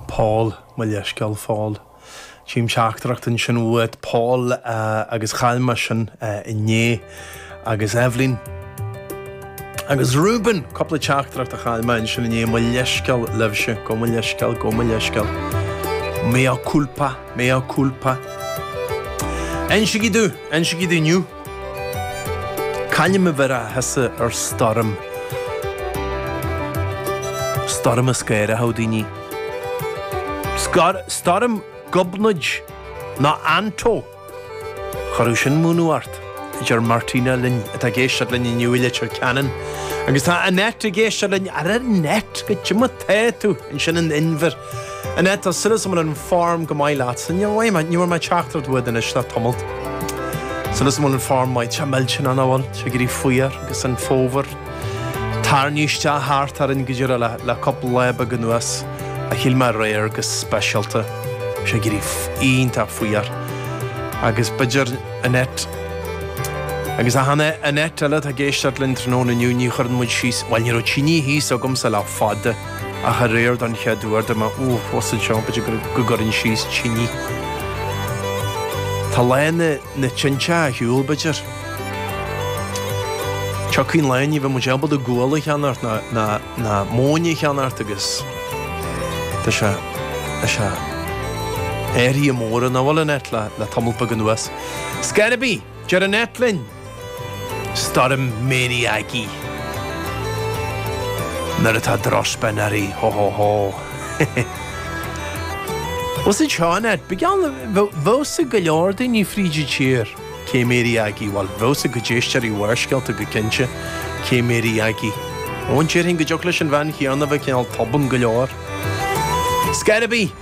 Paul, Mo leithscéal, Phaul. Chím teachtaireacht ansin uait, Paul, agus chaill mé sin inné. Agus Eibhlín. Agus Reuben! Cúpla teachtaireacht a chaill mé ansin inné, mo leithscéal libhse, gabh mo leithscéal, gabh mo leithscéal. Mea culpa, mea culpa. Aimsigí tú, aimsigí tú inniu. Cá hainm a bhéarfása ar stoirm? Stoirm a scanródh daoine. Stoirm Gobnait nó Anto. Chuirfeadh sin múineadh ort, a deir Martina linn, atá ag éisteacht linn inniu i Leitir Ceanainn. Agus tá Annette ag éisteacht linn. Ara Annette, cad é mar atá tú ansin in Inbhir. Annette, tá súil is go bhfuil an form go maith leat. Ní raibh mé, ní bhfuair mé teachtaireacht uait anois le tamallt. Súil is go bhfuil an form maith. Tá mé ag déanamh go bhfuil sé ag éirí fuar agus an fómhar ag tarraingt isteach thart orainn go díreach le, le cúpla lá beag anuas. Ach shíl mé aréir go speisialta go raibh sé ag éirí iontach fuar. Agus b'fhéidir, Annette, agus a Hannah, Annette eile atá ag éisteacht linn tráthnóna inniu, ní chuireann muid síos, bhuel ní raibh tinidh thíos agamsa le fada. ach aréir don chéad uair do mbeith uafós anseo b'fhéidir go go gcuirfinn síos tine. Tá lá na na tinte ar shiúl b'fhéidir. Tiocfaidh lá ní bheidh muid ábalta gual a cheannacht ná ná ná móin a cheannacht agus tá sé tá sé athruithe móra an amhail an áit le le tamall beag anuas. Scor ar bith! Deir Annette linn, Stoirm Mary Aggie. Nuair atá drochspin uirthi, hó hó hó! Bhuel, sin seo Annette, bíodh geall go bhfuil a fhios ag go leor daoine fríd an tír cé Mary Aggie, bhuel, bheadh a fhios ag cuid éisteoirí Bharrscéalta go cinnte cé Mary Aggie. Ó, déarfainn go dtiocfadh leis an bhean chéanna a bheith cineál tobann go leor. Scor ar bith!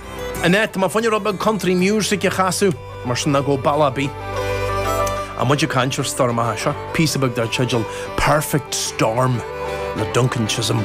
Annette, b'fhearr dúinn rud beag country music a chasadh, mar sin nó go, bhuel ó bhí muid ag caint ar stoirm? Aha, seo píosa beag dar teideal Perfect Storm le Duncan Chisholm.